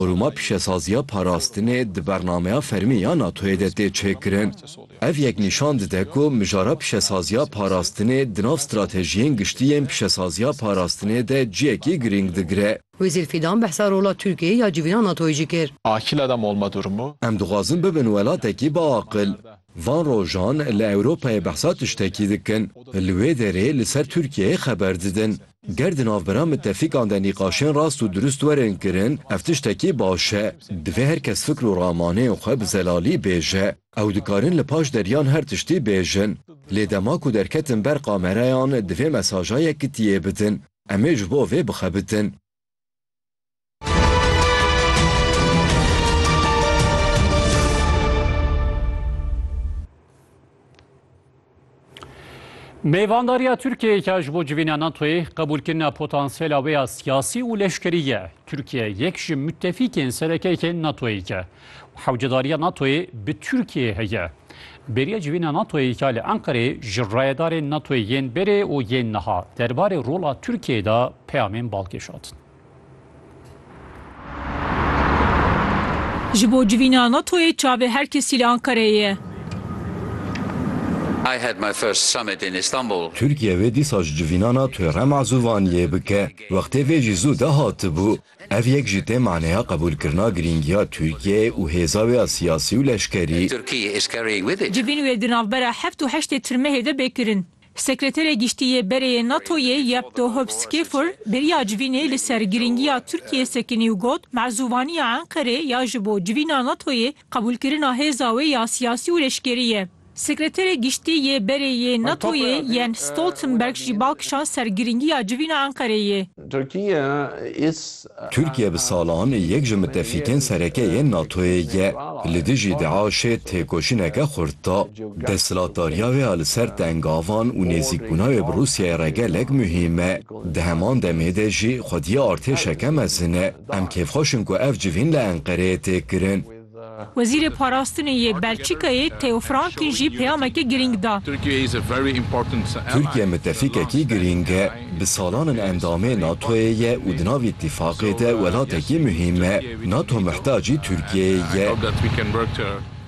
Qurûma Pîşesaziya Parastinê di bernameya fermî ya NATO'yê de tê çêkirin. Ev yek nîşan dide ku mijara pîşesaziya parastinê di nav stratejiyên giştî yên pîşesaziya parastinê de ciyekî girîng digire. Wezîr Fîdan behsa rola Tirkiyeyê ya civîna NATO'yê jî kir. Em dixwazin bibin welatekî biaqil. Van rojan li Ewropayê behsa tiştekî dikin, li wê derê li ser Tirkiyeyê xeber didin. Ger di navbera mitefîkan de nîqaşên rast û dirust werin kirin, ev tiştekî baş e. Divê her kes fikr û ramanên xwe bi zelalî bêje. Ew dikarin li paş deryan her tiştî bêjin. Lê dema ku derketin ber kamereyan divê mesaja yekitiyê bidin. Em ê ji bo vê bixebitin. Mêvandariya Tirkiyeyê ke ji bo civîna NATOyê qebûlkirina potansiyela wê ya siyasî û leşkerî ye. Tirkiye yek ji mitefîkên serekeyekên NATOyê ye. Hewcedariya NATO'yê bi Tirkiyeyê heye. Bêriya civîna NATO'yê ya li Enqereyê ji rayedarên NATO'yê yên berê û yên niha derbarê rola Tirkiyeyê de peyamên bal kêşandin. Ji bo civîna NATO'yê çavê her kesî li Enqereyê ye. Tirkiye vê dîsa ji civîna NATO'yê re mazûvaniyê bike. Wextê vê jî zû de hatibû. Ev yek ji tê maneya qebûlkirina girîngiya Tirkiyeyê û hêza wê ya siyasî û leşkerî. Civîn wê di navbera heft û heştê Tirmehê de bê kirin. Sekreterê Giştî yê Bereyê NATO'yê Jep Dohop Skefur bêriya civînê li ser girîngiya Tirkiyeyê sekinî û got, Mezûvaniya Enqerê ya ji bo civîna NATO'yê Qebûlkirina hêza wê ya siyasî û leşkerî ye. Sekreterê Giştî yê berê yê NATO'yê Jens Stoltenberg jî bal kişand ser girîngiya civîna Enqereyê. Tirkiye bi salan yek ji mitefîkên sereke yên NATO'yê ye. Li dijî DAIŞ'ê têkoşîneke xurt da. Desthilatdariya wê ya li ser tengavan û nêzîkbûna wê bi Rûsyayê re gelek muhîm e. Di heman demê de jî xwediyê artêşeke mezin e. Em kêfxweş in ku ev civîn li Enqereyê tê kirin. Wezîrê Parastinê yê Belçîkayê Theo Franken jî peyameke girîng da. Tirkiye mitefîkekî girîng e. Bi salan in endamê NATO'yê ye û di nav îtîfaqê de welatekî muhîm e. NATO mihtacî Tirkiyeyê ye.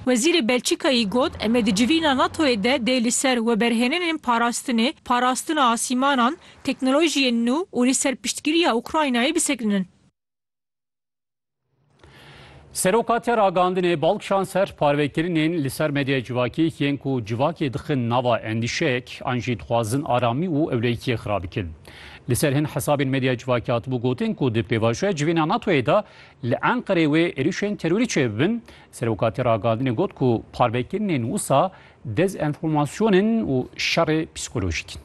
Wezîrê Belçîkayî got, Em ê di civîna NATO'yê de dê li ser weberhênenên parastinê, parastina asîmanan, teknolojiyên nû û li ser piştgiriya Ukraynayê bisekinin. Seroka tê ragihandinê bal kişand ser parvekirinên li ser medyaya civakî yên ku civakê dixin nava endîşeyek an jî dixwazin aramî û ewlehîtiyê xira bikin. Li ser hin hesabên medyaya civakî hatibû gotin ku di pêvajoya civîna NATO'yê de li Enqereyê wê êrîşên terorî çêbibin, Serokatî ragihandinê got ku parvekirinên wisa dezenformasyon in û şerê psîkolojîk in.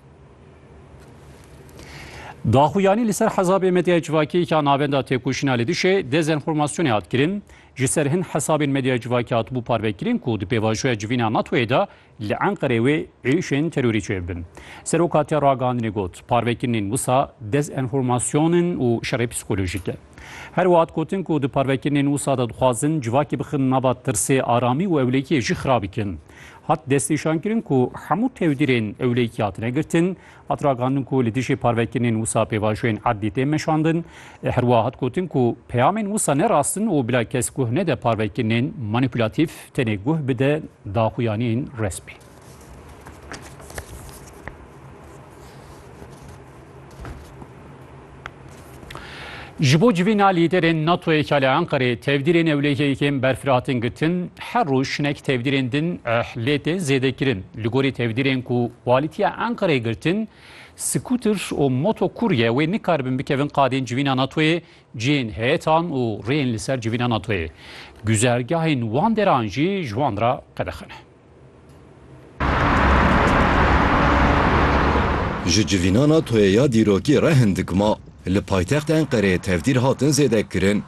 Daxuyanî li ser hesabê medyaya civakî ya navenda têkoşîna li dijî dezenformasyonê hat kirin. Ji ser hin hesabên medyaya civakî hatibû parvekirin ku di pêvajoya civîna NATO'yê de Li Enqerê wê êrişên terorî çêbibin. Seroka te ragihandinê got, parvekirinên wisa dezenformasyon in û şerê psîkolojîk e. Her wiha dikotin ku di parvekirinên wisa de dixwazin civakê bixin nava tirsê, aramî û ewlehiyê jî xirab bikin. Hat destnîşankirin ku hemû tevdîrên ewlehiyê hatine girtin, Hat ragihandin ku li dijî parvekirinên wisa pêvajoyên erdî tên meşandin. Herwiha hat gotin ku peyamên wisa ne rast in û bila kes guh nede parvekirinên manîpulatîf tenê guh bide daxuyaniyên resmî. Ji bo civîna lîderên NATOyê ka li Enqereyê tevdîrên ewlehiyên berfireh hatin girtin, her roj hinek tevdîrên din lê tê zêdekirin. Li gorî tevdîrên ku walîtiya Enqereyê girtin, skuter û motokurye wê nikaribin bikevin qadên civîna NATOyê, cihên heyetan û rêyên li ser civîna NATOyê. Güzergahên wan deran jî ji wan re qedexene. Ji civînana toyê ya dîrokî re hin dikma li paytext Enqereyê tevdîr hatin zêdekirin.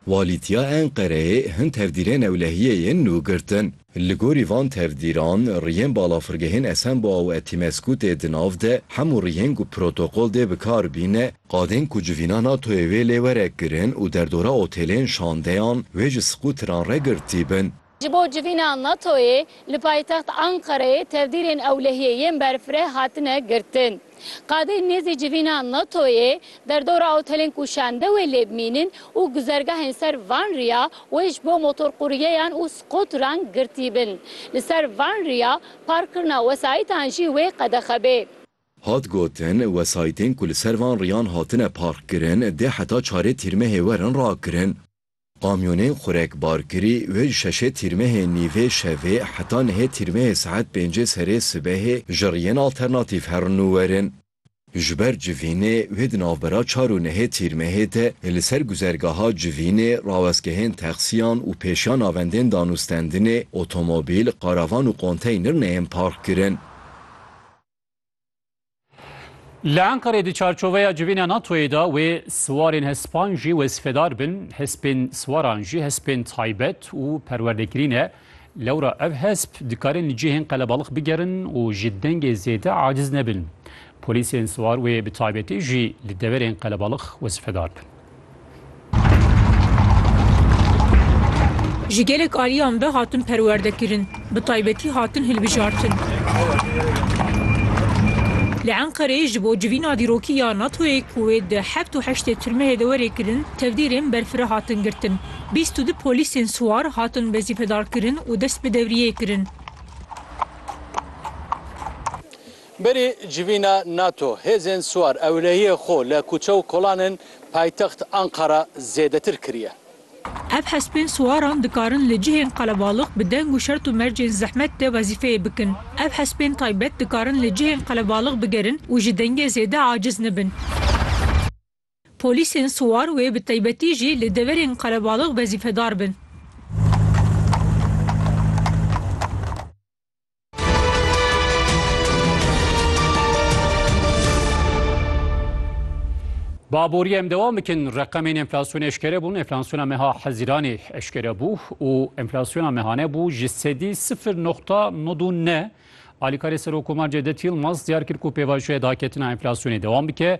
Walîtiya Enqereyê hin tevdîrên ewlehiyê yên nû girtin. Li gorî van tevdîran riyên balafirgehên Esenboa û Etimesku tê di nav de, hemû riyên ku protokol dê bi kar bîne, Qadên ku civîna NATO'yê wê lê were kirin û derdora otêlên şandeyan wê ji skûteran re girtîbin. Ji bo civîna NATO'yê li paytext Anqereyê tevdîrên ewlehiyê yên berfireh hatine girtin. Qadên nêzî civîna NATO'yê derdora otêlên ku şande wê lê bimînin û guzergehên ser van riya wê ji bo motorquryeyan û skûteran girtîbin. Li ser van riya parkkirina wesayîtan jî wê qedexe bê. Hat gotin, wesayîtên ku li ser van riyan hatine parkkirin dê heta çarê tîrmehê werin rakirin. Kamyonên xurek barkirî wê ji şeşê tîrmehê nîvê şevê heta nehê tîrmehê saet pêncê serê sibehê ji riyên alternatîf herin û werin. Ji ber civînê wê di navbera çar û nehê tîrmehê de li ser guzergaha civînê, rawestgehên texsiyan û pêşiya navendên danûstendinê, otomobîl, karavan û konteynir neyên parkkirin. Li Enqerê di çarçoveya civîna NATOyê de wê siwarên hespan jî wezîfedar bin, hespên siwaran jî hespên taybet û perwerdekirî ne. Lewra ev hesp dikarin li cihên qelebalix bigerin û ji dengê zêde aciz nebin. Polîsên siwar wê bi taybetî jî li deverên qelebalix wezîfedar bin. Ji gelek aliyan ve hatin perwerdekirin, bi taybetî hatin hilbijartin. Li Enqereyê ji bo civîna dîrokî ya NATO'yê ku wê di heft û heştê tirmehê de werê kirin, tevdîrên berfireh hatin girtin. Bîst û du polîsên siwar hatin wezîfedarkirin û dest bi devriyê kirin. Berê civîna nato, hêzên siwar ewlehiyê xwe li kuçe û kolan ên paytext Anqara zêdetir kiriye. Ev hespên siwaran dikarin li cihên qelebalix bi deng û şert û mercên zehmet de wezîfeyê bikin. Ev hespên taybet dikarin li cihên qelebalix bigerin û ji dengê zêde aciz nebin. Polîsên siwar wê bi taybetî jî li deverên qelebalix wezîfedar bin. Baborî em dewam bikin reqemên enflasyonê eşkere bûn enflasyona meha hezîranê eşkere bû û enflasyona mehane bû ji sedî sifir noxta nod û ne Alîkarê Serokkomar Cevdet Yilmaz diyar kir ku pêvajoya daketina enflasyonê dewam bike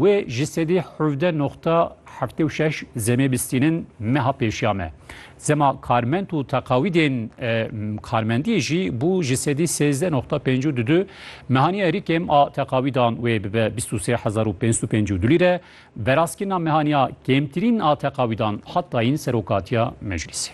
Wê ji sedî hevdeh noqta heftê û şeş zemê bistînin meha pêşiya me. Zema karmend û teqawîdên karmendiyê jî bû ji sedî sêzdeh noqta pêncû du du. Mehaniya rîkêm a teqawîdan wê bibe bîst û sê hezar û pênc sed û pêncî û du lîre. Verazkirina mehaniya kêmtirîn a teqawîdan hat dayîn Serokatiya Meclîsê.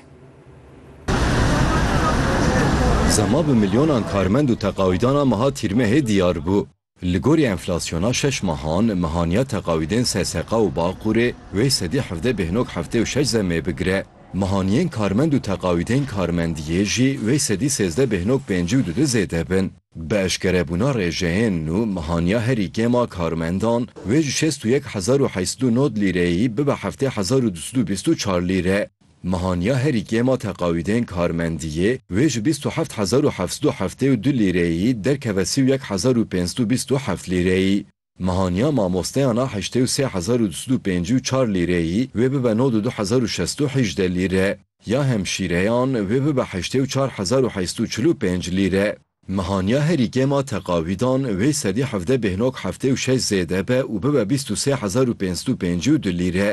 Zema bi milyonan karmend û teqawîdan a meha Tîrmehê diyar bû. Li gorî enflasyona şeş mehan, mehaniya teqawîdên SSK û Baqûrê wê sedî hevdeh bêhnok heftê û şeş zemê bigire. Mehaniyên karmend û teqawîdên karmendiyê jî wê sedî sêzdeh bêhnok pêncî û du du zêde bin. Bi eşkerebûna rêjeyên nû, mehaniya herî kêm a karmendan wê ji şêst û yek hezar û heşt sed û nod lîreyî bibe heftê hezar û du sed û bîst û çar lîre. Mehaniya herî kêm a teqawîdên karmendiyê wê ji bîst û heft hezar û heft sed û heftê û du lîreyî derkeve sî û yek hezar û pênc sed û bîst û heft lîreyî. Mehaniya mamosteyan a heştê û sê hezar û du sed û pêncî û çar lîreyî wê bibe nod û du hezar û şest û hîjde lîre. Ya hemşîreyan wê bibe heştê û çar hezar û heşt sed û çil û pênc lîre. Mehaniya herî kêm a teqawîdan wê sedî hevdeh bêhnak heftê û şeş zêde be û bibe bîst û sê hezar û pênc sed û pêncî û du lîre.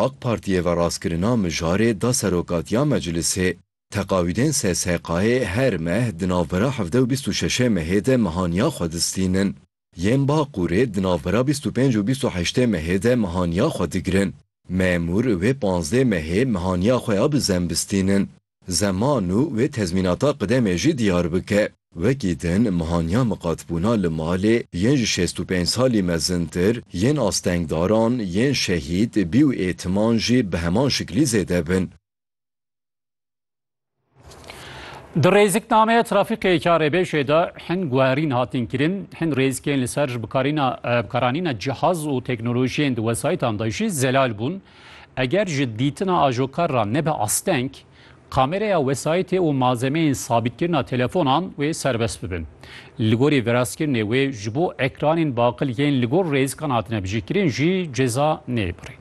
AK Partiyê ve rastkirina mijarê da serokatiya meclisê. Teqawîdên SSHK'ê her meh di navbera hevdeh û bîst û şeşê mehê de mehaniya xwe distînin. Yên Baqûrê di navbera bîst û pênc û bîst û heştê mehê de mehaniya xwe digirin. Memûr wê panzdê mehê mehaniya xwe ya bi zem bistînin. Zeman û wê tezmînata qidemê jî diyar bike. Wekî din mehaniya miqatbûna li malê yên ji şêst û pênc salî mezintir, yên astengdaran, yên şehîd, bî û ê timan jî bi heman şiklî zêde bin. Di rêziknameya trafîkê karêbêjê de hin guherîn hatin kirin, hin rêzikên li ser ji bikaranîna cihaz û teknolojiyên di wesayîtan de jî zelal bûn. Eger ji dîtina ajokar re nebe asteng, kamereya wesayîtê û malzemeyên sabîtkirina telefonan wê serbest bibin. Li gorî viraskirinê wê ji bo ekranên baqil yên li gor rêzikan hatine bijîkirin jî ceza neyê birîn.